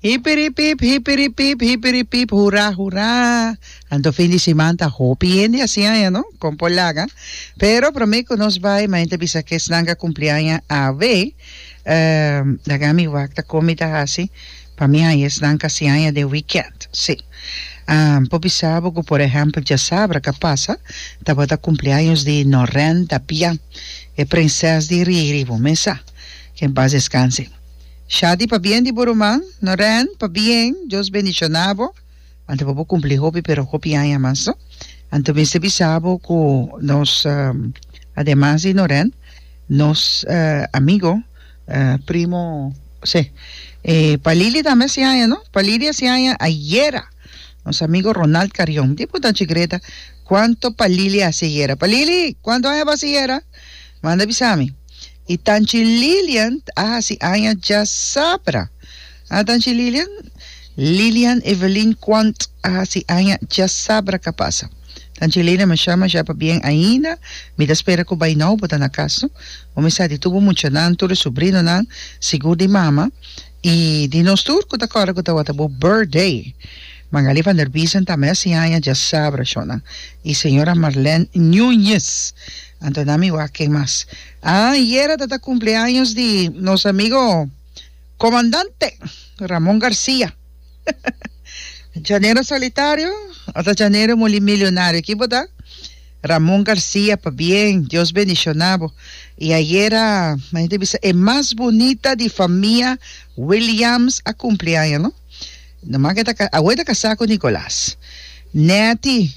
Hipiripip, hipiripip, hipiripip, hurá, hurá. Anto fin di siman ta hopi hende así aña, no? Con por laga. Pero promé cu nos bai, maña ta bisa que esnan a cumpli aña awe. Ehm, laga mi wak ta con mi ta haci. Pa mi haya esnan kasi haya den weekend, si. Ahn, por bisa bo cu por ehempel djasabra ca pasa tabata cumpleaños di Norén Dapiá, e prinses di Riri, bo mesa, que en paz descanse. Shadi pa bien di bo ruman, Norén, pa bien, Dios bendiciona bo, anto pa bo cumpli hopi pero hopi aña mas, no. Anto mester bisa bo cu nos, ademas di Norén, nos amigo, Primo, Sí. E pa Lily tambe a siaña, no? Pa Lily a siaña ayera. Nos amigo Ronald Carrion. Di punta anchi Greta, Cuanto pa Lily a haci ayera? Pa Lily, cuanto aña bo a haci ayera? Manda bisa mi. Y ta anchi Lilian a haci aña djasabra. A Danchi Lilian, Lilian Evelyn Quant a hasi aña dja sabra ka pasa. Danchi Lilian mi shama dja pa bien ainda, mi ta spera ku bai nou bo ta na kas no, bo mi sa di tur bo muchanan, tur e sobrinonan, sigur di mama i di nos tur ku ta kòrda ku tawata bo birthday. Magali van der Biesen tambe hasi aña dja sabra shornan i señora Marlèn Nuñez. Anto nan mi wak ken mas. Ah yera ta ta kumpleaños di nos amigo. Comandante Ramon Garcia Janero solitario o ta janero moli milionario ki bo ta? Ramon Garcia pabien Dios bendiciona bo y ayera men ta bisa e mas bunita di famia Williams a cumpli aña no no mas ke ta awe ta casa cu Nicolas neti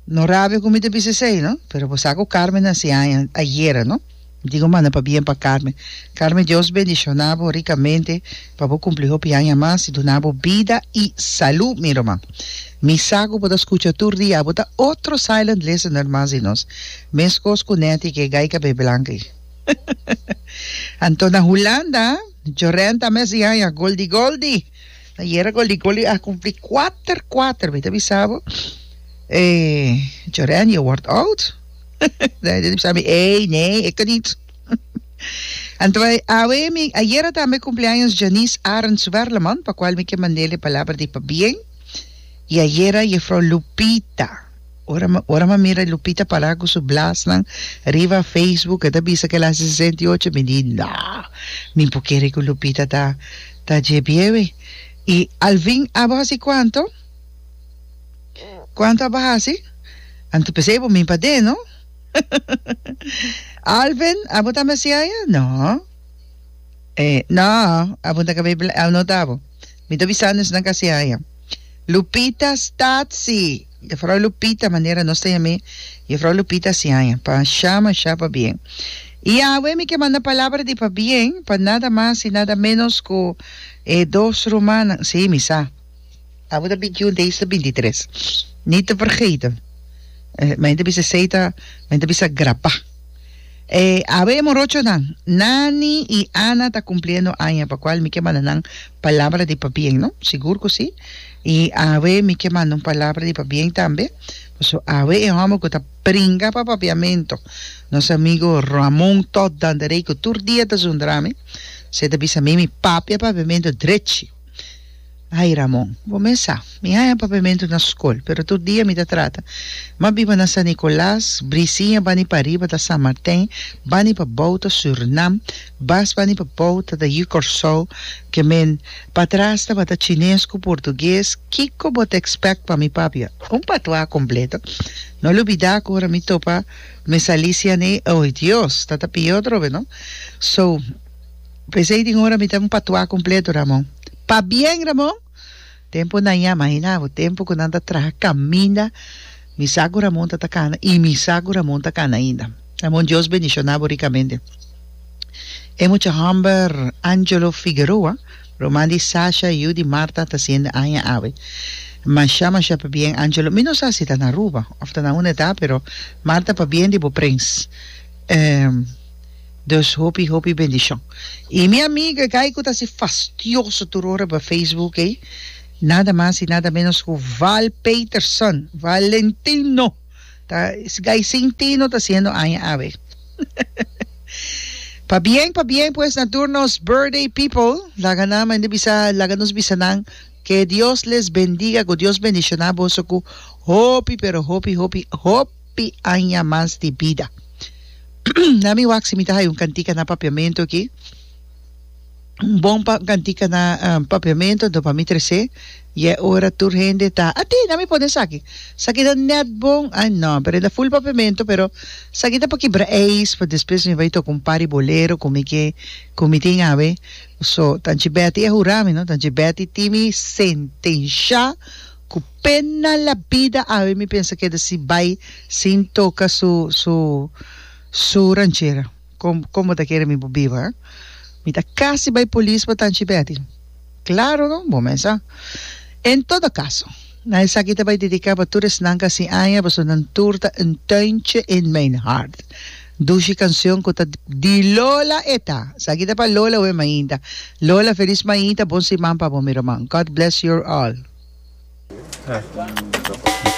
No rabia cu mi ta bisa esey, no? Pero bo sa cu Carmen naci aña ayera, no? Mi dico manda pabien pa Carmen. Carmen, Dios bendiciona bo ricamente pa bo cumpli hopi aña mas y duna bo bida y salud, mi ruma. Mi sa cu bo ta scucha tur dia, bo ta otro silent listener mas di nos. Mescos cu Netty, que e gai cabé blanca ey. Antona Hulanda, Jorenta mes di aña, Goldi Goldi! Ayera Goli Goli a cumpli cuater cuater, mi ta bisa bo. Eh, Joren, je wordt oud. Dan je bisa mi, ey, nee, ik niet. Anyway, awe mi, ayera tambe cumpleaños Janice Arends Werleman, pa cual mi ke mandele palabra di pabien. Y ayera jefrouw Lupita. Ora m'a mira Lupita pará ku su blasnan riba Facebook, e ta bisa ku el hasi sesenta i ocho, mi di, No! Mi por kere ku Lupita ta dje biewe. I Alvin, abo hasi kuantu? Kuantu abo hasi? Anto p'esei bo min paden, no? Alvin, abo ta masiaya? No. No, abo no ta kabai blanku, abo no ta abo. Mi ta bisa no esnan kasi haya. Lupita, Statsy! Jefrouw Lupita, manera nos ta yam'é Jefrouw Lupita si haya, pa sha mashá pa bien. I awe mi ke manda palabra di pa bien pa nada mas i nada ménos ku e dos rumannan. Sí, mi sa. Abo ta bintiún, dei ta bintitres. Nit ta fergeten. Mei ta bisa esei ta, mei ta bisa grapa. E awe morochonan, Nani i Ana ta kumpliendo aña, pa kual mi ke manda nan palabra di pabien, no? Sigur ku si. I awe mi ke manda un palabra di pabien tambe, paso awe e hòmber ku ta pringa pa papiamentu, nos amigu Ramon Todd Danderey, ku tur dia ta zundra mi, si e ta bisa mi mi papia papiamentu drechi. Ay Ramon, bo mes sa, mi haña papementu na skol, pero tur dia mi ta trata, ma biba na San Nicolas, brisiña bani pariba ta San Martin, bani pa bou ta Surinam, bas bani pa bou ta ta Yu Corsou, ke men patras tabata chines ku portugues, kiko bo ta expect pa mi papia? Un patuá kompleto. No lubidá ku ora mi topa mes Alicia nei, oy Dios, ta ta pió trobe no. So. P'esei tin ora mi ta un patuá kompleto, Ramon. Pabien, Ramon! Tempu na ya, mahina bo, tempu ku nan ta traha kaminda, mi sa ku Ramon ta ta kana i mi sa ku Ramon ta kana ainda. Ramon, Dios bendishoná bo rikamente. E mucha hòmber Angelo Figueroa, ruman di Sasha i yu di Marta, ta siende aña awe. Mashá, mashá pabien, Angelo. Mi no sa si ta na Aruba òf ta na unda e ta, pero Marta, pabien di bo prens. E. Dus hopi hopi bendishon. Y mi amiga gay cu ta si fastioso tur ora pa Facebook ey, nada mas y nada menos cu Val Peterson, Valentino, ta es gay sin tino ta haciendo aña awe. Pabien pabien pues na tur nos birthday people, laga nan mende bisa laga nos bisa nan que Dios les bendiga cu Dios bendiciona boso cu hopi pero hopi hopi hopi. hopi aña mas di bida. Na mi wak si mi ta haya un kantika na papiamentu aki, un bon pa kantika na uh papiamentu, anto pa mi tres'é i e ora tur hende ta at'é na mi pone esaki, esaki ta nèt bon, ai nò, pero e ta ful papiamentu, pero esaki ta pa kibra eis, pa despues mi bai toka un par di bolero ku mi ke, ku mi tin awe, so Tanchi Bèti a hurami no, Tanchi Bèti timi sentensha. Ku pena la bida awe mi pensa keda si bai sin toka su su su ranchera. Kom komo ta kere mi por biba eh. Mi ta kasi bai polis pa tanchi Betty. Klaro no, bo mes sa. En todo kaso, na esaki ta bai dediká pa tur esnan kasi aña pasobra nan tur ta un tuintje in mijn hart. Dushi kansyon ku ta di Lola e ta. Esaki ta pa Lola oe mainta. Lola felis mainta bon siman pa bo mi roman God bless your all.